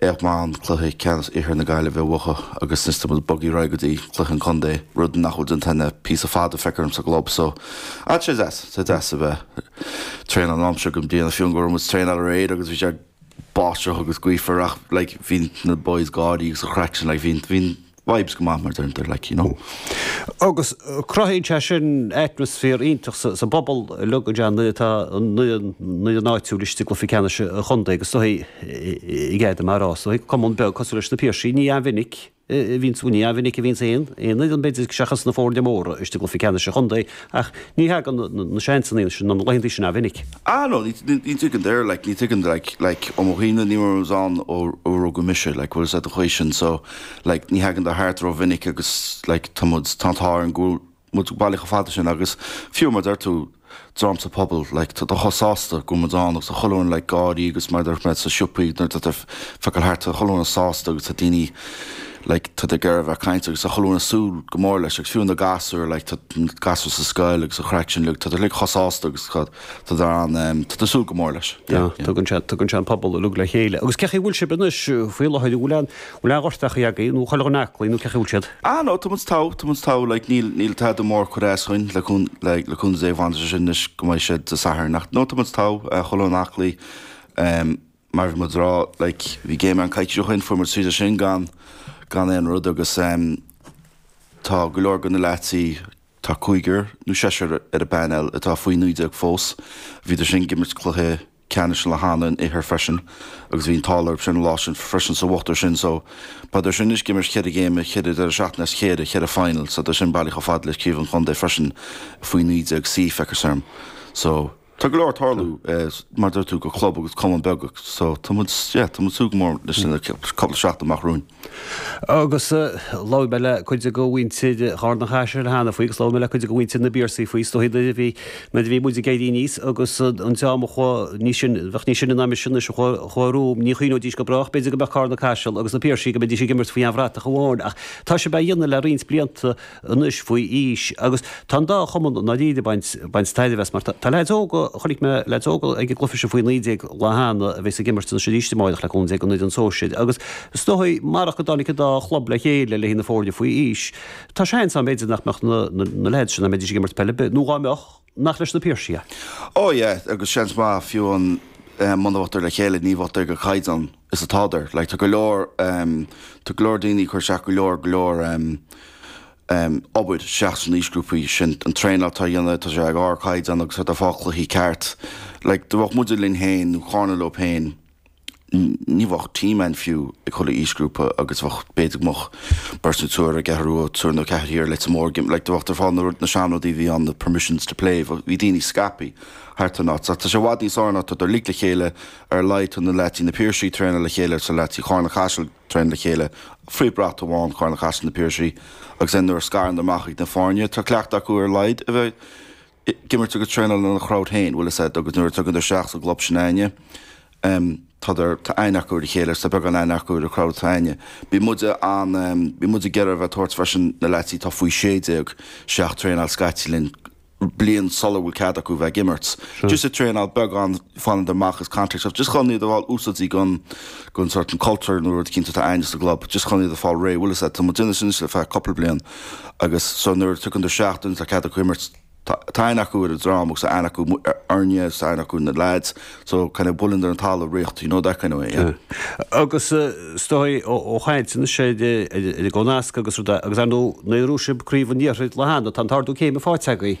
Éag Bán, cluiche ceannais Iarthar na Gaillimhe a bhuachan agus anois tá muid ag bogadh ar aghaidh go dtí cluiche an chontae, rud nach bhfuil déanta againn le píosa fada feictear dhom sa gclub so. Tá sé deas, tá sé deas a bheith ag traenáil an t-am seo den bhliain fiú amháin go raibh muid ag traenáil aréir agus bhí sé ag báisteach agus gaofar ach like bhí na boys ag gáirí agus an chraic sin like bhí bhí vibes go maith mar a deirtear like you know. Agus cruthaíonn sé sin atmaisféar iontach sa bpobal uilig go deimhin nuair atá foireann áitiúil istigh i gcluife ceannais an chontae agus is dóigh go gcaithfidh mé a rá is dóigh. Cumann beag cosúil leis na Piarsaigh ní an-mhinic a bhíonns ní an-mhinic a bhíonns aon fhoireann b'fhéidir seachas na foirne móra istigh i gcluife ceannais an chontae ach ní thagann na seansannaí sin nó na laethanta sin an-mhinic. Ah no ní thaganndar like ní thagann like like ó mo thaobh de ní raibh ann ó rugadh mise like bhfuil fhios a'd an chaoi sin so. Like ní thaganndar thart rómhinic agus like tá muid tá an t-ádh orainn go bhfuil muid bailithe chomh fada sin agus fiú mar deir tú dream sa phobal like tádar chomh sásta go bhfuil muid ann agus tá chuile dhuine like ag gáirí agus mar deir mé sa siopaí nuair atá tú ag feiceáil thart tá chuile dhuine sásta agus tá daoine like tádar ag iarraidh a bheith ag caint agus tá chuile dhuine ag súil go mór leis agus fiú amháin na gasúir like tá na gasúir sa scoil agus an chraic sin like tádar like chomh sásta agus tá tádar ann ehm tádar ag súil go mór leis yeah yeah. Tugann sé tugann sé an pobal uilig le chéile. Agus cén chaoi a bhfuil sibh anois faoi láthair an bhfuil an Bhfuil aon ghortú agaibh nó chuile dhuine aclaí nó cén chaoi a bhfuil siad? Ah no, tá muid togha, tá muid togha, like, níl, níl tada mór ag cur as dúinn le cúnamh, like, le cúnamh Dé bhaineas leis sin anois go mbeidh sé Dé Sathairn ach no, tá muid togha, eh, chuile dhuine aclaí, em, mar bhí muid ag rá, like, bhí game againn coicís ó shin, fuair muid tríd sin gan, gan aon rud agus, em, tá go leor go na leaids, tá cúigear nó seisear ar an bpainéal atá faoi naoi déag fós, bhíodar sin ag imirt cluiche, ceannais an lá cheana san Iarthar freisin agus bhí an t-ádh orthu sin an lá sin freisin so bhuadar sin so beidh dar sin anois ag imirt cheithre game cheithre deireadh seachtaine as a chéile cheithre final so tádar sin bailithe chomh fada le craobh an chontae freisin faoi 19 C feictear dhom so tá go leor ag tarlú mar deir tú do chlub agus cumann beag so tá muid yeah tá muid ag súil go mór leis an gcúpla seachtain amach romhainn. Agus labhair mé le cuid de mhuintir Charna Caiseal cheana faoi agus labhair mé le cuid de mhuintir na bPiarsaigh faoi. Is dóigh nuair a bhí, nuair a bhí muid ag éirí aníos agus an dream a chuaigh níos sine, a bheadh níos sine ná mise anois, a chuaigh, a chuaigh romham, ní chuimhneoidís go brách b'fhéidir go mbeadh Carna Caiseal agus na Piarsaigh, go mbeidís ag imirt faoi aon bhratach amháin. Ach tá sibh á dhéanamh le roinnt blianta. anois faoi aois agus tá an dá chumann i ndáiríre ag baint tairbhe as mar tá leaids óga, chonaic mé leaids óga ag an gcluife sin faoi naoi déag an lá cheana a bheas ag imirt anois arís amáireach le cúnamh Dé don fhoireann sóisir agus is dóigh marach go dtáinig an dá chlub le chéile le haghaidh na foirne faoi aois tá seans ann b'fhéidir nach mbeadh na leaids sin a mbeidís ag imirt peil ar bith nó dhá mbeadh Nach leis na Piarsaigh é? Ó yeah, agus seans maith fiú amháin muna mbeadh dar le chéile ní bheadh dar ag an gcaighdeán is atádar. Like tá go leor em tá go leor daoine ag cur isteach go leor go leor em em obair isteach sna haoisghrúpaí sin an traenáil atádar a dhéanamh tá sé ag ardchaighdeán agus tádar ag fáil cluichí ceart. Like dá mbeadh muide linn féin nó Carna leo féin, ní bheadh team ann fiú ag chuile aoisghrúpa agus bheadh, b'fhéidir go mbeadh beirt nó triúr i gCeathrú Rua, triúr nó ceathrar thiar Leitir Móir ag imirt, like, bheadh dar ag fáil na rud, na seanrudaí a bhí ann, na permissions to play, bheadh, bhí daoine scaipthe thart an áit. Tá sé i bhfad níos fearr now, tádar uilig le chéile ar a laghad tá na leaids, na Piarsaigh traenáil le chéile is leaids Charna Caiseal traenáil le chéile faoi bhrat amháin, Carna Caiseal na Piarsaigh agus then nuair a scarann amach ag na foirne tá cleachtadh acu ar a laghad a bheith, ag imirt agus traenáil lena chrowd féin, bhuel is ea, agus nuair a tagann tú isteach sa gclub sin againne em tádar, tá aithne acu ar a chéile, tá beagán aithne acu ar an chrowd atá aine. Bhí muide an em, bhí muid ag iarraidh a bheith ag tabhairt freisin na leaids atá faoi sé déag isteach traenáil scaití linn, bliain sular bhfuil cead acu a bheith ag imirt. Just ag traenáil beagán, fanann dar amach as contact of just chun iad a fháil úsáidte gon, gon sort an culture nó rud eicínt atá againne sa gclub, just chun iad a fháil réidh, bhuel is ea, tá muid déanamh sin anois le feadh cúpla bliain. Agus so nuair a thagann an tseachtain, tá cead acu imirt, tá aithne acu ar an dream agus tá aithne acu orainne agus tá aithne acu ar na lads, so kind of buaileann dar an talamh riocht, you know, that kind of way, yeah. Agus is dóigh ó chaint anois ar an gcónasc agus rud agus ar ndóigh, nuair a bhuaigh sibh Craobh an Iarthair le hAnna, tá an t-ardú céime faighte agaibh.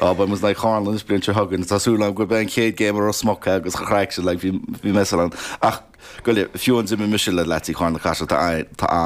Á, beidh muid in aghaidh Charna anois an bhliain seo chugainn, tá súil agam gurb é an chéad game i Ros Muc é agus an-chraic é, like, bhí, bhí mé sa rang. Ach, go leor, fiú ann, d'imir mise le leaids Charna Caiseal, tá, tá an.